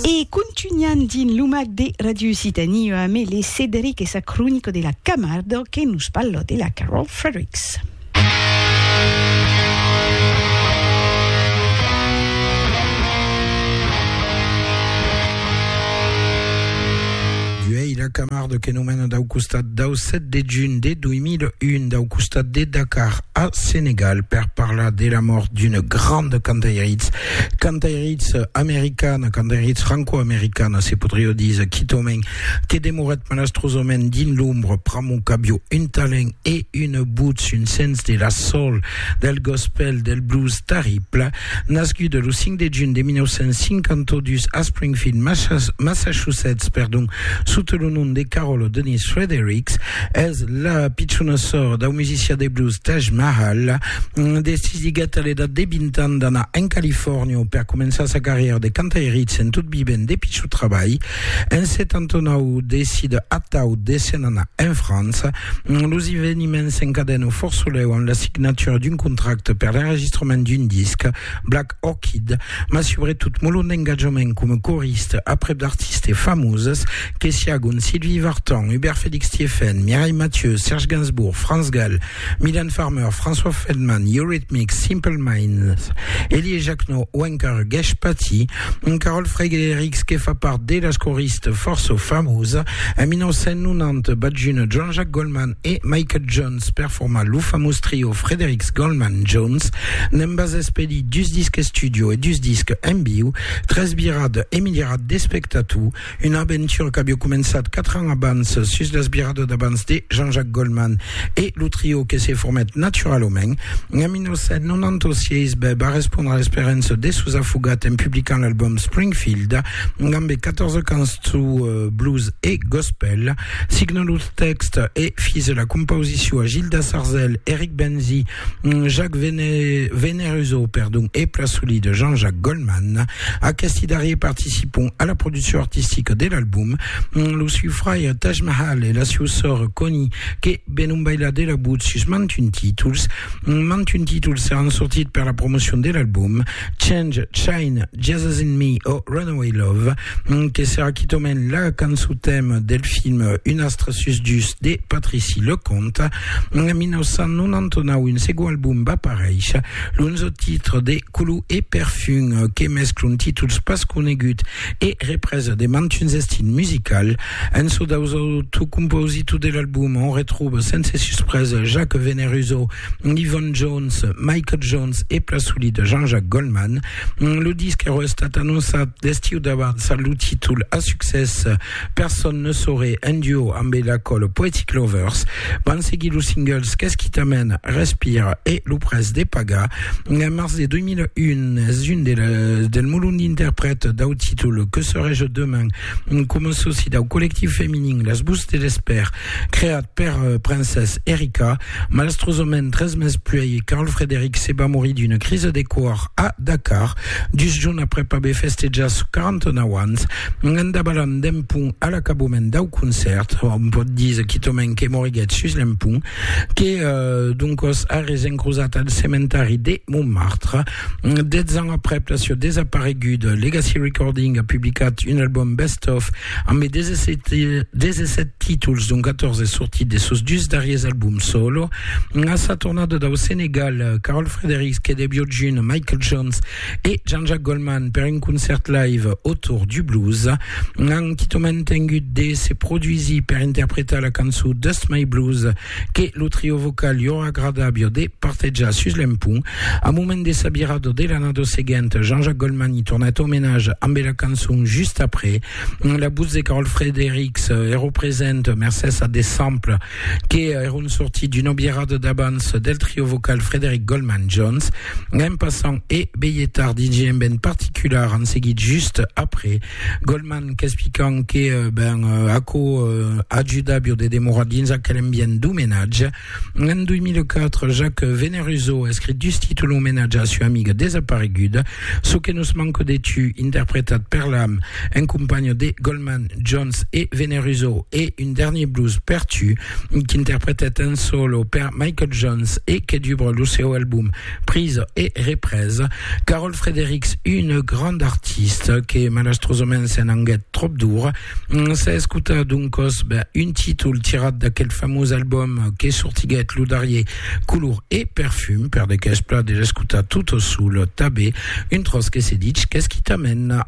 E contunhan dins lo mag de Radio Occitanie ua mele Cederic e sa cronica de la Camardo que nos parla de la Carol Fredericks. Uèi la Camardo que nos mena dau costat dau 7 de junh de 2001 dau costat de Dakar a Senegal per parlar de la mòrt d'una granda cantairitz Cantairitz americana, cantairitz franco-americana, se podrió díser quitament, que demorèt malastrosament dins l'ombra pr'amor qu'avió un talent e una votz, un sens de la soul, del gospel, del blues terrible. Nascuda lo 5 de junh de 1952 a Springfield, Massachusetts, perdon, sota lo nom de Carole Denise Fredericks, es la pichona sòr dau musician de blues Taj Mahal. Decisiguèt a l'edat de 20 ans d'anar en Califòrnia per començar sa carrièra de cantairitz en tot vivent de pichut trabalh. En 79 decide atau de se'n anar en França. Los eveniments s'encadèn au Fòrt Solèu amb la signatura d'un contracte per l'enregistrament d'un disc, Black Orchid, mas subretot molon d'engatjament coma coriste aprèp d'artistes famoses que siágon Sylvie Vartan, Hubert Félix Thiéfaine, Mireille Mathieu, Serge Gainsbourg, Franz Gall, Mylène Farmer, François Feldman, Eurythmics, Simple Minds, Elie Jacquenot o encara Gèsh Patti, un Carol Frédérics que fa part de las coristes fòrça famosa. En 1990 bat juna Jean-Jacques Goldman e Michael Jones per formar lo famós trio Frédérics Goldman Jones. N'embas espeli dus disques studio e dus disques en viu, tres virades e miliarats d'espectators. Una aventura qu'aviá començat quatre ans abans sus las viradas d'abans de Jean-Jacques Goldman e lo trio que se formèt naturalament en 1996 bèb a respondre a l'esperança de sos afogats en publicant l'album Springfield dambe 14 cançons blues e gospel. Signant los tèxtes e fis la compausicion a Gilda Sarzel, Eric Benzi, Mm, Jacques Vene, Veneruso, perdon, e Plasoli de Jean-Jacques Goldman. Aquesti darrier participon a la produccion artistica de l'album. Mm, Lo siu fraire Taj Mahal e la siu sòr Connie, que venon bailar de la but sus mantun títols. Mm, Mantun títols seràn sortit per la promocion de l'album. Change, Shine, Jesus in Me o Runaway Love, mm, que serà quitament la cançon tèma del film Un astre sus dus de Patrici Leconte. En 1999, un segon album va paréisher, l'onzo titre de Culu e Perfum, que mescla un títols pas conegut e represa de mantuns estils musical. En çò daus auto composito de l'album, on retroba sense suspresa Jacques Veneruso, Yvonne Jones, Michael Jones e pla solida Jean-Jacques Goldman. Lo disc èra estat anonçat l'estiu d'abans amb lo títol a succès Personne ne saurait, un duo amb e Lacole Poetic Lovers, van seguir los singles Qu'est-ce qui t'amène, Respir e Lo pres de pagar. En març de 2001 es un de les, del molon d'interprètes dau títol Que serai-je demain? coma soci dau collectiu feminin Les Bouts de l'Espère, creat per Princess Erika. Malastrosament, tres mes puèi, Carl Frederick se va morir d'una crisa de còr a. Dakar, dus jorns aprèp aver festejat sos 49 ans, en dabalant d'un pont a l'acabament dau concèrt, òm pòt díser quitament que moriguèt sus l'empont, que d'on còs arrés encrosat al cementari de Montmartre. Dètz ans aprèp la sieu desapareguda, Legacy Recording a publicat un album best-of Ambe 17, 17 títols, dont 14 sortits de sos dus darriers albums solo, a sa tornada dau Senegal, Carol Fredericks, Kede Biojun, Michael Jones e Jean-Jacques Goldman per un concèrt live autour du blues, an quitament tengut de se produsir per interpretar la cançon Dust My Blues que lo trio vocal li aurà agradabio de partejar sus l'empont. Au moment de sa virada de l'annada seguenta, Jean-Jacques Goldman i tornèt au menage ambe la cançon Just après. La votz de Carol Fredericks èro present mercés a de samples que èron sortits d'una virada d'abans del trio vocal Frederick Goldman Jones. Anem passant e Beyetar DJ en ben particular en seguit Just après. Goldman qu'explican que ben, aquò ajuda bio de demorar dins aquel ambient d'omenatge. En 2004, Jacques Veneruso escrit dus títol omenatge a sua amiga desapareguda, Çò que nos manque de tu, interpretat per l'am en companha de Goldman, Jones e Veneruso, e Un dernier blues per tu, qu'interpretèt en solo per Michael Jones e que dubra lo seu album Prisa e represa, Carol Frederics, une grande artiste que malastrosament se n'anguèt trop dura, s'es escutat d'un còs ben, un títol tirat d'aquel famós album que sortiguèt lo darrier Color e Perfum, per de qu'es plat de l'escutar tot sul tabé, un tròç que se ditz qu'es quitament.